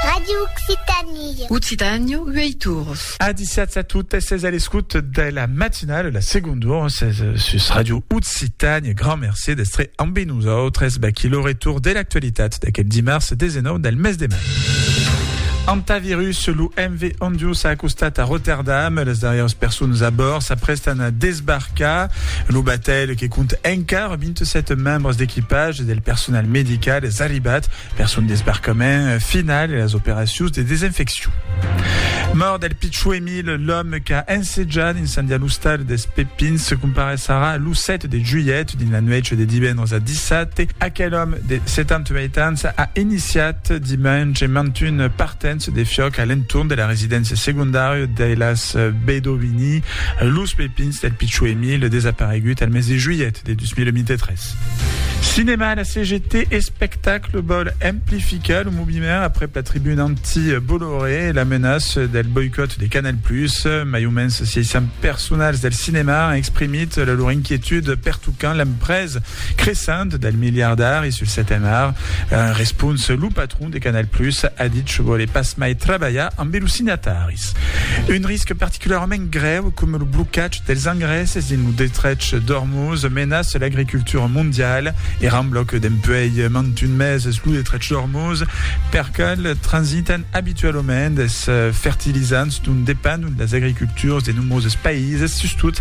Radio Occitanie. Occitània, uei tours. Adiciats a totes es a l'escut de la matinale, la seconde hora ses sus Radio Occitània. Grand merci d'estre amb nosaltres baquí lo retour de l'actualitat d'aquel dimars 19 del mes de mai. Antavirus, lo MV Ondio s'ha acostat a Rotterdam. Les darrièrs personnes a bord s'aprestan a desbarcar. Lo batèl que compte encara Amb 27 membres d'equipatge e del personal medical es arribat per son desbarcament final e las operacions de desinfeccion. Mòrt del pichon Emil, l'òme qu'a ensejat incendiar l'ostal dels Pepins se comparesarà lo 7 de julhet dins la nuèch de divendres a dissabte. Aquel òme de 78 ans a iniciat dimenge mantunes partenças Se defioc a l'entorn de la residéncia segondària de las Bedovini, Los Pepins del Pichó Emile, desaparegut al mes de juilhet de 2023. Cinèma a la CGT, Espectacle vòl amplificar lo moviment aprèp la tribuna anti-Bolloré e la menaça del boicòt de Canal Plus. Mai o mens 600 personals del cinèma an exprimit lor inquietud pertocant l'empresa. Cressent del miliardari sul seten ar, en respons lo patron de Canal Plus a dit que vòle pas mai trabalhar ambe los signataris. Un risc particularament grèu coma lo blocatge dels engrèsses dins lo destrech d'Ormuz menaça l'agricultura mondiala e rembla que dempuèi mantun meses lo destrech d'Ormuz per qual transitan abitualament es fertilizants dont dependon las agriculturas de nombroses païses, sustot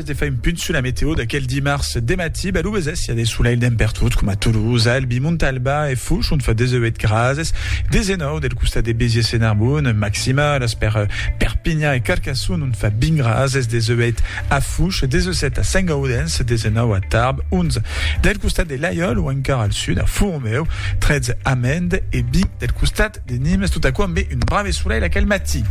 Abans de far un punt sus la meteo d'aquel dimars de matí, balhou besés, i a de solelh dempertot, coma a Toulouse, a Albi, Montalba e Fouch, ont fa 18 grases, 19 del costat de Béziers e Narbonne. Maximales per Perpinhan e Carcassonne, ont fa 20 grases, 18 a Fouch, 17 a Saint-Gaudens, 19 a Tarbes, 11 del costat de Laiòl o encara al sud a Fourmeu, 13 a Mende e 20 del costat De Nimes, tot aquò ambe un brave solelh aquel matí.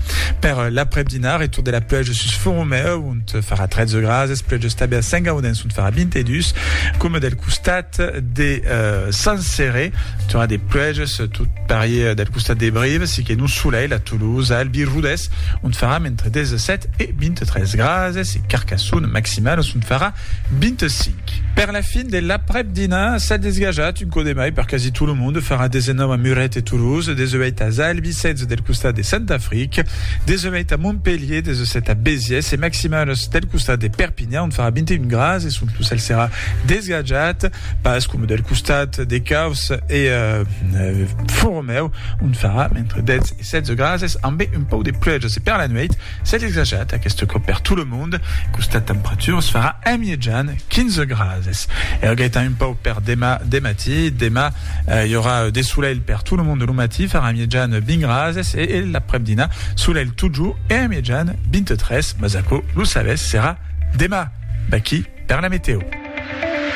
Per l'aprèp-dinar, retour de la pluèja sus Font-Romèu, ont farà 13 grases, pluèja estable a Saint-Gaudens, ont farà 22, coma del costat de Saint-Céré, tornada de pluèjas, tot parier del costat de Brive, siquet nos solelh a Toulouse, a Albi, Rodés, ont farà entre 17 e 23 grases, e Carcassonne, maximalas ont farà 25. Per la fin de l'aprèp dinar s'a desgajat un cò de mai per quasi tot lo monde, farà 19 a Muret e Toulouse, 18 a Zaalbissètz del costat de Sant Afric, 18 a Montpelhier, 17 a Béziers e maximals del costat de Perpinhan ont farà 21 grads e sont lo cèl serà desgajat, pas coma del costat de Causse e Foromèu ont farà entre 10 e 16 grases ambe un pauc de pluèjas e per la nuèit Cèl exajat, aqueste còp per tot lo mond, costat temperaturas farà en mièjan 15 grases. Èra gaitan un pauc per demà de matí. Demà i aurà de solelh per tot lo mond, lo matí farà en mièjan 20 grases e l'aprèp-dinà solelh totjorn e en mièjan 23, mas aquò lo sabètz serà demà, d'aquí per la metèo.